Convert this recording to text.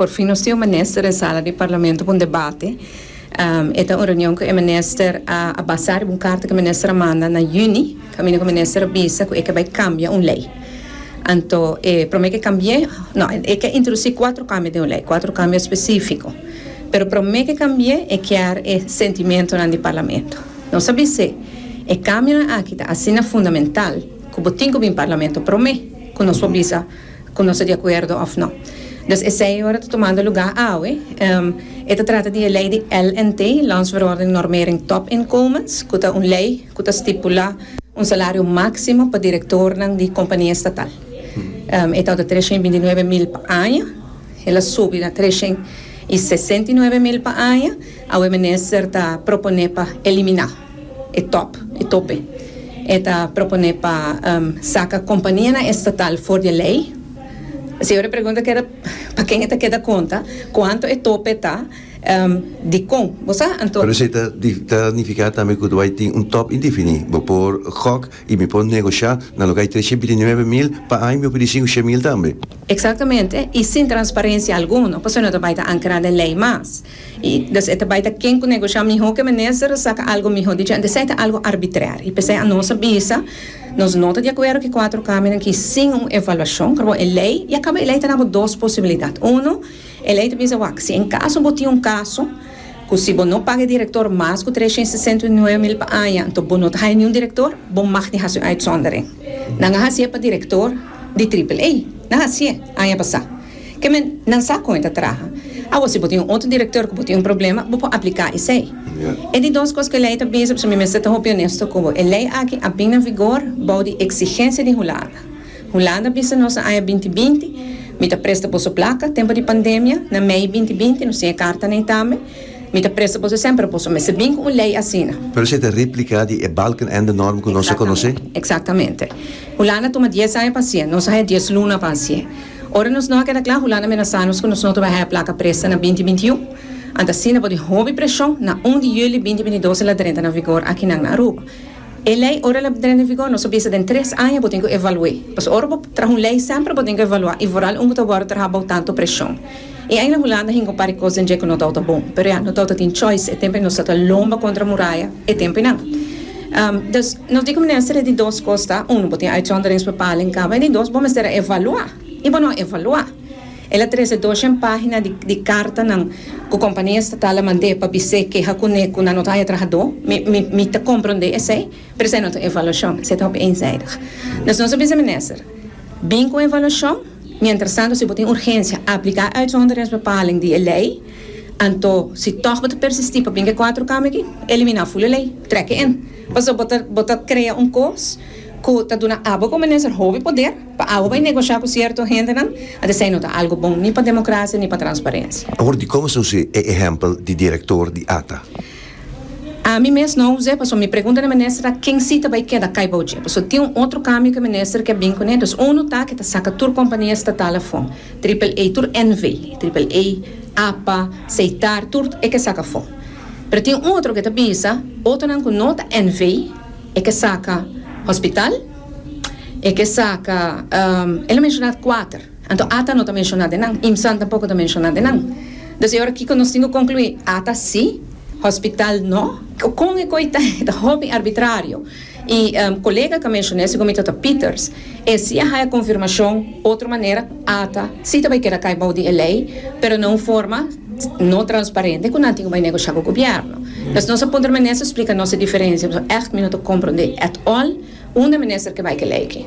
Por fin nos tin un minister den sala di parlamento pa un debate. E ta un reunion cu e minister a basa riba un carta cu e minister a manda na juni, caminda cu e minister a bisa cu e ke bay cambia un ley. Anto e prome ke cambie, no, e ke introduci cuatro cambio den un ley, cuatro cambio specifico. Pero e prome ke cambie e kier e sentimentonan di parlamento. Nos a bis'e, e cambionan aki ta asina fundamental cu bo tin cu bin parlamento prome cu nos por bisa, cu nos ta di acuerdo of no. Dus esey ora ta tomando lugar awe. E ta trata di e ley di LNT, Landsverordening Normering Topinkomens, cu ta un ley cu ta stipula un salario maximo pa directornan di compania estatal. E tabata treshen i binti nuebe mil pa aña. El a subi na treshen i sesenta i nuebe mil pa aña. Awe Minister ta propone pa elimina. e top, e tope. E ta propone pa saca companianan estatal for di e ley. Señor e pregunta keda paken e ta keda conta cuanto e tope ta y dicon. Bo sa anto. Pero esey ta nifica tambe cu bai tin un top indefini. Bo por gok y mi por negocia na loke hay trescientos binti nuebe mil pa aña mi por pidi cinco shent mil tambe. Exactamente y sin transparencia alguno, pasobra no ta bai ta ancra den ley mas. I dus e ta bai ta ken ku negoshá mihó ku e minister a saka algu mihó di dje. Esei ta algu arbitrèr i p'esei anos a bisa nos no ta di akuerdo ku e kuatro kameranan ki sin un evaluashon kabaw e lei ya kaba e lei ta na bo dos posibilidat unu e lei ta bisa wak si en kaso bo tin un kaso ku si bo no paga e direktor mas ku tres shent sesenta i nuebe mil pa aña anto bo no ta haya niun direktor bo mag di hasi un uitsondering nan a hasié pa direktor di triple A nan hasié aña pasá. Ke men nan sa kon e ta traha. Awo si bo tin un otro direktor ku bo tin un problema, bo por apliká esei. E di dos kos ku e lei ta bisa, pasobra mi mester ta hopi onesto ku bo. E lei aki a bin na vigor bou di eksigensia di Hulanda. Hulanda a bisa nos na aña binti binti, Mi ta presta boso plaka, tempu di pandemia, na mei binti binti, nos tin e karta nei tambe, Mi ta presta boso esei, pero boso mester bin ku un lei asina. Pero esei ta repliká di e Balkenende-norm ku nos a konosé. Eksaktamente. Hulanda a tuma dies aña pa hasié, nos a haña dies luna pa hasié. Ora nos no a keda kla, Hulanda menasá nos ku nos no ta bai haña plaka presta na binti binti un. Ant asina bo di hopi preshon, na un di yüli binti binti dos e la drenta na vigor akinan na Aruba. E lei ora el a drenta na vigor nos a bisa den tres aña bo tin ku evalu'é. Pasobra ora bo traha un lei sèmper bo tin ku evaluá i vooral un ku ta wòrdu traha bou tantu preshon. E Eiland Hulanda hinga un par di kosen dje ku no tou ta bon, pero ya no tou ta tin choice, e temponan nos tabata lomba kontra muraya e temponan. Dus, nos di ku mester e di dos kos ta, unu, bo tin uitzonderings pa pala en kaba, en di dos, bo mester a evaluá i bo no a evaluá. El a trese doshen página di di kartanan ku kompania estatal a mand'é pa bis'é keha kuné ku nan no ta haya trahadó, mi mi mi ta komprondé esei, pero esei no ta evaluashon, esei ta hopi eenzijdig. Dus nos a bisa, Minister, bin ku un evaluashon. Mientrastantu, si bo tin urgensia, apliká e uitsonderensbepaling di e lei, anto si tòg bo ta persistí pa bringa e kuater kama aki, eliminá ful e lei, trèk e in. Pasobra bo ta bo ta krea un kos ku ta duna abo ku minister hopi poder pa abo bai negoshá ku sierto hendenan, ant esei no ta algu bon ni pa demokrasia ni pa transparensia. Hoor dikon esei un ehémpel di direktor di ata. Ami mes no us'é, pasobra mi pregunta na minister ta ken si ta bai keda kai bou dje, pasobra tin un otro kambio ke minister ke bin kuné. Entos unu ta ke ta saka tur kompania estatal afó, triple A, tur NV, triple A, APA, Seitar, tur e ke saka afó. Pero tin un otro ke ta bisa otonan ku no ta NV, e ke saka hospital, e ke saka, el a menshoná kuater. Anto Ata no ta menshona den nan, IMSAN tampoko ta menshona den nan. Des di ora kiko nos tin ku konkluí? Ata sí, hospital no? Kon e koi ta e ta hopi arbitrario? I kolega ka menshoné si kominto ta Pieters. E sí a haya konfirmashon otro manera, Ata sí ta bai keda kai bou di e lei, pero na un forma no transparente ku nan tin ku bai negoshá ku gobièrnu. Des nos a puntra minister splika nos e diferensia pasobra ègt mi no ta komprondé at all unda e minister ke bai ku e lei aki.